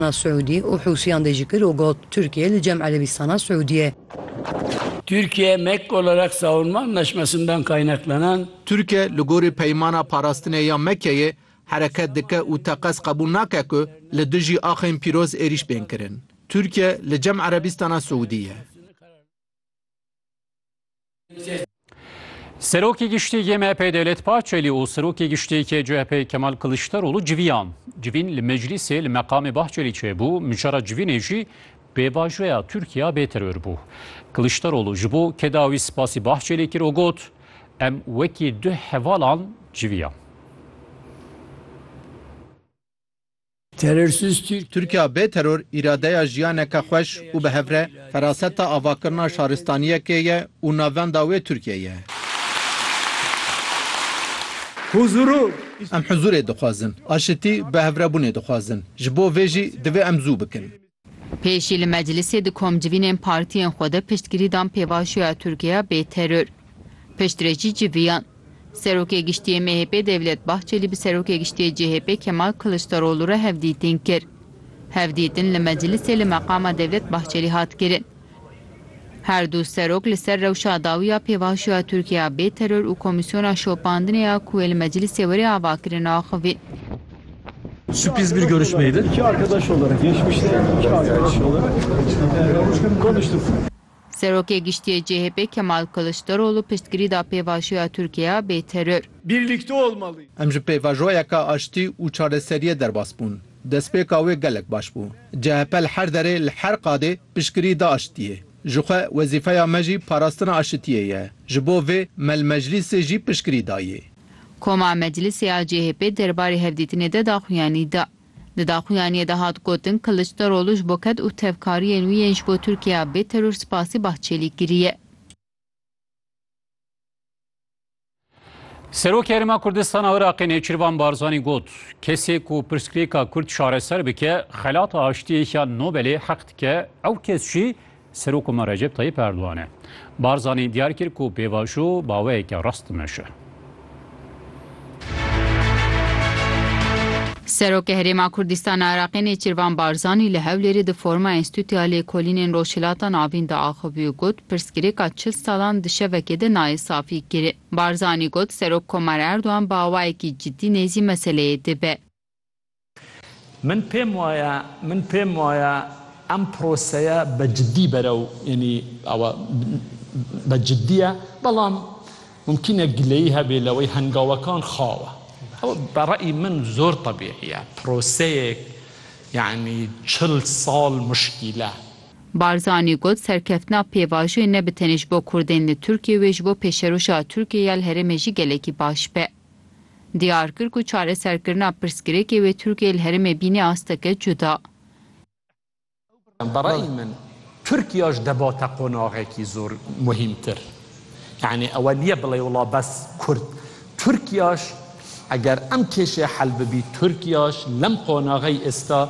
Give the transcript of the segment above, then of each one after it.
na Siûdî û Hûsiyan dê jî kir û got, Tirkiye li cem Erebîstana Siûdî ye. Türkiye me ek olarak Savunma Anlaşması'ndan kaynaklanan, Tirkiye li gorî Peymana Parastinê ya Mekkeyê hereket dike û teqez qebûl nake ku li dijî axên pîroz êrîş bên kirin. Tirkiye li cem Erebîstana Siûdî ye. Serokê Giştî yê MHP Dewlet Bahçelî û Serokê Giştî yê CHP Kemal Kiliçdaroglu civiyan. Civîn li meclîsê li meqamê Bahçelî çêbû, micara civînê jî pêvajoya Tirkiya bê teror bû. Kiliçdaroglu ji bo kedawî spasî Bahçelî kir û got, Em wekî du hevalan civiyan. Terorsiz Tirk. Tirkiya bê teror îradeya jiyaneke xweş û bi hevre feraseta avakirina şaristaniyekê ye û navenda wê Tirkiye ye. Em huzûrê dixwazin, aşitî, bihevrebûnê dixwazin. Ji bo vê jî divê em zû bikin. Pêşî li meclisê di komcivînên partiyên xwe de piştgirî dan pêvajoya Tirkiyeya bê teror. Piştre jî civiyan. Serokê Giştî yê MHP'ê Devlet Bahçelî bi Serokê Giştî yê CHP'ê Kemal Kiliçdarolû re hevdîtin kir. Hevdîtin li meclisê li meqama Devlet Bahçelî hat kirin. Her du serok li ser rewşa dawî ya pêvajoyê ya Tirkiye ya bê teror û komîsyona şopandinê ya ku wê li meclîsê were ava kirin axivîn. Sürpriz bir görüşmeydi. İki arkadaş olarak, geçmişte iki arkadaş olarak e, konuştuk. Serokê Giştiyê CHP'ê Kemal Kılıçdaroğlu piştgirî da pêvajoya Tirkiye ya bê teror. Birlikte olmalıyız. Em ji pêvajoyeke aştî û çareseriyê derbas bûn. Destpêka wê gelek baş bû. CHP li her derê, li her qadê piştgirî da aşitiyê. Ji xwe wezîfeya me jî parastina aşitiyê ye. Ji bo vê me li meclîsê jî piştgirî dayê. Koma meclîsê ya CHP'ê derbarê hevdîtinê de daxuyanî da. Di daxuyaniyê de hat gotin Kiliçdaroglu ji bo ked û tevkariyên wî yên ji bo Tirkiyeya bê teror spasî Bahçelî kiriye. Serokê Herêma Kurdistana Iraqê Nêçirvan Barzanî got, kesê ku pirsgirêka Kurd çareser bike, xelata aştiyê ya Nobelê heq dike, ew kes jî Serok me Recep Tayyip Erdogan e. Barzanî diyar kir ku pêvajo baweyeke rast dimeşe. Serokê Herêma Kurdistana Iraqê Nêçirvan Barzanî li Hewlêrê di forma Enstîtuya Lêkolînên Rojhilata Navîn de axivî û got, Pirsgirêka çil salan di şevekê de nayê safî kirin. Barzanî got, Serok Komar Erdogan bi awayekî cidî nêzî meseleyê dibe. Min pêm waye, min pêm waye em proseye be cidî berew yanî awa be cidî ye. Belam mumkîn e gileyî hebê lewey hengawekan xaw e. Ew be reyî min zor tebîî ye. Proseyêk yanî çil sal muşkîl e. Barzanî got, Serkeftina pêvajoyê ne bi tenê ji bo kurdên li Tirkiyê wê ji bo pêşerûşa Tirkiyê ya li herêmê jî gelekî baş be. Diyar kir ku çareserkirina pirsgirêkê wê Tirkiyê li herêmê bînê asteke cuda. Bi reyî min Tirkiya ji debata qonaxekî zor muhîmtir yanî ewe niye bilê wila bes kurd Tirkiyaş eger em kêşê hel bibî Tirkiyaş lem qonaxey êsta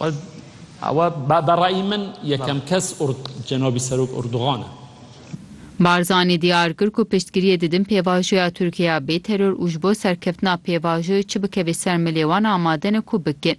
Ew be rayî min yekem kes cenabî serok Erdogan e. Barzanî diyar kir ku piştgiriyê didin pêvajoya Tirkiye ya bê teror û ji bo serkeftina pêvajoyê çi bikevê ser milê wan amade ne ku bikin.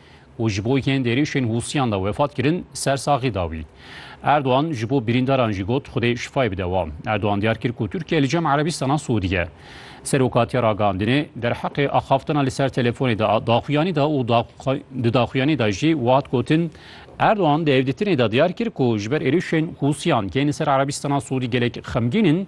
û ji bo yên êrişên Hûsiyan de wefat kirin, sersaxî da wî. Erdogan ji bo birîndaran jî got Xwedê şifayê bide wan. Erdogan diyar kir ku Tirkiye li cem Erebîstana Siûdî ye. Seroka tiya ragihandinê derheqê axaftina li ser telefonê de daxuyanî da û di daxuyanî de jî wihat gotin, Erdogan di hevdîtinê de diyar kir ku ji ber êrişên Hûsiyan yên li ser Erebîstana Siûdî gelek xemgîn in,